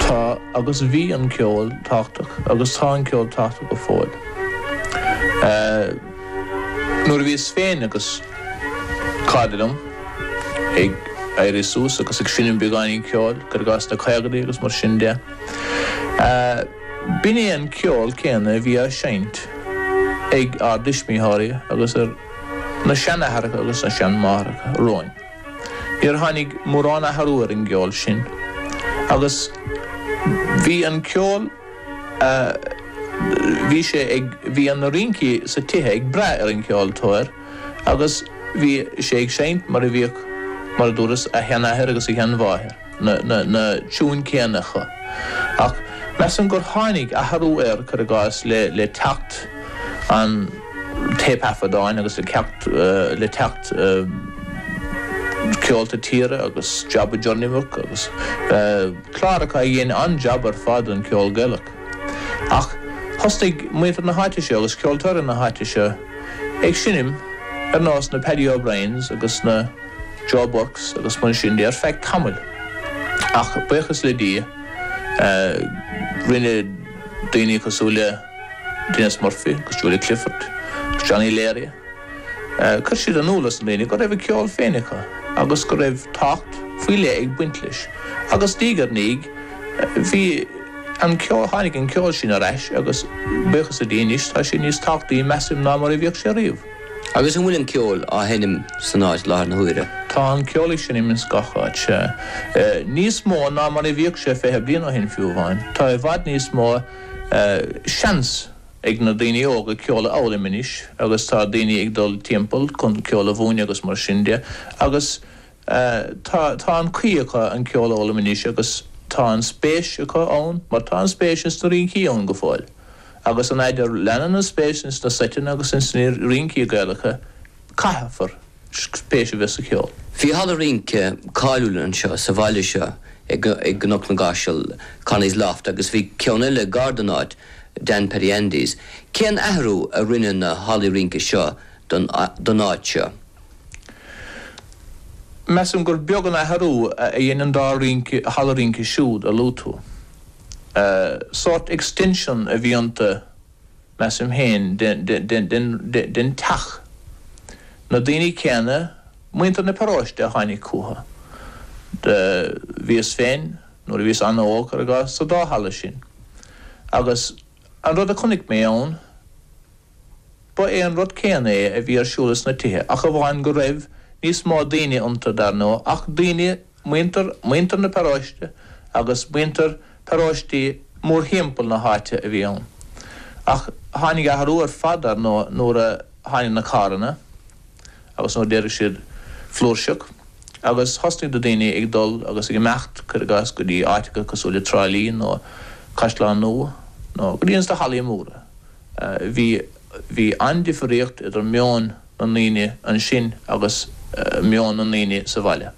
Tá agus bhí an ceol tábhachtach agus tá an ceol tábhachtach go fóill. Nuair a bhíos féin agus cairde dom ag éirí suas agus ag seinm beagáinín ceoil, cur i gcás sna caogadaí agus mar sin de, b'in é an ceol céanna a bhí á seinnt ag ár dtuismitheoirí agus ar na seanathracha agus na seanmháithreacha romhainn. Níor tháinig mórán athrú ar an gceol sin agus bhí an ceol a bhí sé ag, bhí na rincí sa tithe ag brath ar an ceoltóir agus bhí sé ag seinnt mar a bhíodh, mar a dúras, a sheanathair agus a sheanmháthair. na tiúin céanna acu. Ach measaim gur tháinig athrú air, cur i gcás, le teacht an téipthaifeadáin agus le teacht le teacht Ceolta Tíre agus Job of Journeywork agus cláracha a dhein an-jab ar fad don cheol Gaelach. Ach thosnaigh muintir na háite seo agus ceoltóirí na háite seo ag seinm ar nós na Paddy O'Briens agus na. Joe Burkes agus mar sin de ar feadh tamaill. Ach buíochas le Dia rinne daoine cosúil le Denis Murphy agus Julia Clifford agus Johnny Leary, chuir siad in iúl dos na daoine go raibh a ceol féin acu agus go raibh tábhacht faoi leith ag baint leis agus diaidh ar ndiaidh bhí an ceol, tháinig an ceol sin ar ais agus buíochas le Dia anois tá sé níos tábhachtaí measaim ná mar a bhíodh sé riamh. Agus an bhfuil an ceol á sheinm san áit i láthair na huaire? Tá an ceol ag seinm ins gach áit, sea. Níos mó ná mar a bhíodh sé fiche bliain ó shin fiú amháin. Tá i bhfad níos mó seans ag na daoine óga ceol a fhoghlaim anois agus tá daoine ag dul timpeall chun ceol a mhúineadh agus mar sin de agus, Tá tá an chaoi acu an ceol a fhoghlaim anois agus tá an spéis acu ann mar tá an spéis ins na rincí ann go fóill. Agus an fhaid a leanann an spéis ins na seiteanna agus ins na rincí Gaelacha caithfear spéis a bheith sa cheol. Bhí halla rince cáiliúil anseo sa bhaile seo i gCnoc na gCaiseal, Connie's Loft, agus bhí ceann eile gar don áit, Dan Paddy Andy's. Cén athrú a rinne na hallaí rince seo don áit seo? Measaim gur beag an athrú a dhein an dá rinc halla rince siúd a luaigh tú. Sórt extension a bhí iontu, measaim féin, den teach. Na daoine céanna, muintir na paróiste, a tháinig chucu. Bhíos féin, nuair a bhíos an-óg, cur i gcás, sa dá halla sin. Agus an rud a chonaic mé ann, Ba é an rud céanna é a bhí ar siúl ins na tithe ach amháin go raibh níos mó daoine iontu, dar ndóigh, ach daoine, muintir, muintir na paróiste agus muintir paróistí mórthimpeall na háite a bhí ann. Ach tháinig athrú ar fad, dar ndóigh, nuair a tháinig na carranna agus nuair a d'éirigh siad flúirseach agus thosnaigh na daoine ag dul agus ag imeacht, cuir i gcás, go dtí áiteacha cosúil le Trá Lí nó Caisleán Nua nó go dtí ins na hallaí móra. Bhí an-difríocht idir meon na ndaoine ansin agus meon na ndaoine sa bhaile.